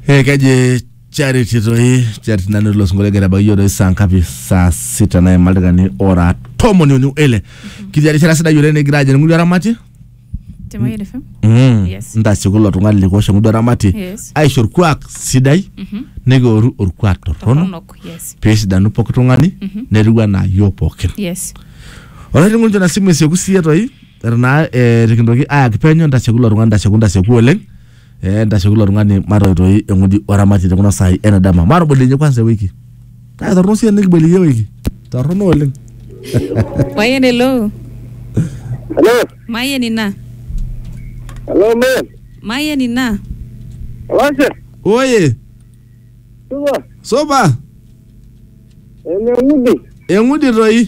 Eh, kaji charity toi charity nanu ilo sinkolio egira abaiki yiok toi saa ngapi saa sita naima ildaikani ora tomoni uni ele kitii erishata sidai oleng nikigira ajing ng'udu eramati Temayian FM. Mm. Yes. ntasieku ilo tung'ani likiwosh eng'udu eramati Yes. aisho orkuak sidai nikioru orkuak torrono Torronok. Yes. peesidanu pooki tung'ani netiu anaa yiok pookin Yes. olainining'oni njo na simu esieku siiyie toi eton naa eh, tikintoki ayaki penyo ntasheku ilo tung'ani ntasheku ntasheku oleng eh, ntasheku ilo tung'ani matoitoi eng'udi oramati tekuna saai ena dama matoboliyie kwanza ewiki kake torrono sii enikiboliyie ewiki torrono oleng Mayen hello. Hello, Mayen ina. hello man. Mayen ina. Olashe, oye supa, soba ene ng'udi. eng'udi toi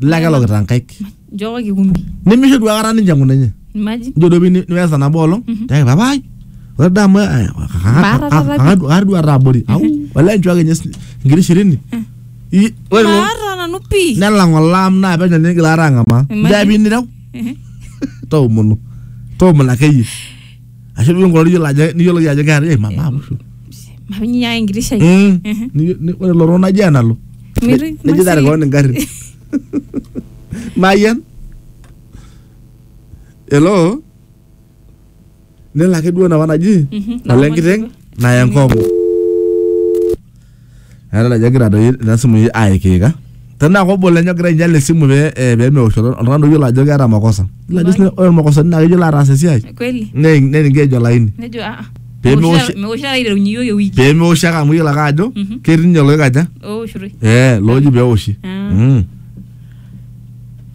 Lile ake lokita nkaik. Nchooki kikumbi. Nemeisho duo aikata ninche enkuna enye. Imagine. Ijo duo pini niwesa nabo olong. Tiaki papa ai. Ore daa amu Maata taata pi. kakar duo ataa abori. Au wala nchooki enye si- nkiri shirini. I- Ore ilo Maata nanu pii. nelang olaam naa penyo nigil aata ang'amaa. Imagine. Nchaapi nireu. Ehe. Toomonu. Toomonu akeyie. ashu duo ngoro niyiolo ajo niyiolo ajo keeta eh mama amushu Maminyaa enkiti shai. Mm. Mhm. Ni- ni- ore loro naji enalo Mirri- neji tare koon ingarrin nayen elo nelo ake duo napa naji Mhm. nalo enkiteng naya enkong'u eeta najo egira doi ina simu ii aikiika tenaa kobo lenye ogira ainyal esimu pee eh, pee meoshoto oltung'ani oyiolo ajo keeta makosa Ilo ajo sina- ore makosani naa keyiolo ataas esiai kweli ne- neningeej olaini nejo aa Pee meosh- meoshi taata aiterunye iyiok ewiki pee meoshi ake amu iyiolo ake ajo Mhm. ketii ninye loikaja owoshitoi eh looji pee eoshi Ah. Mm.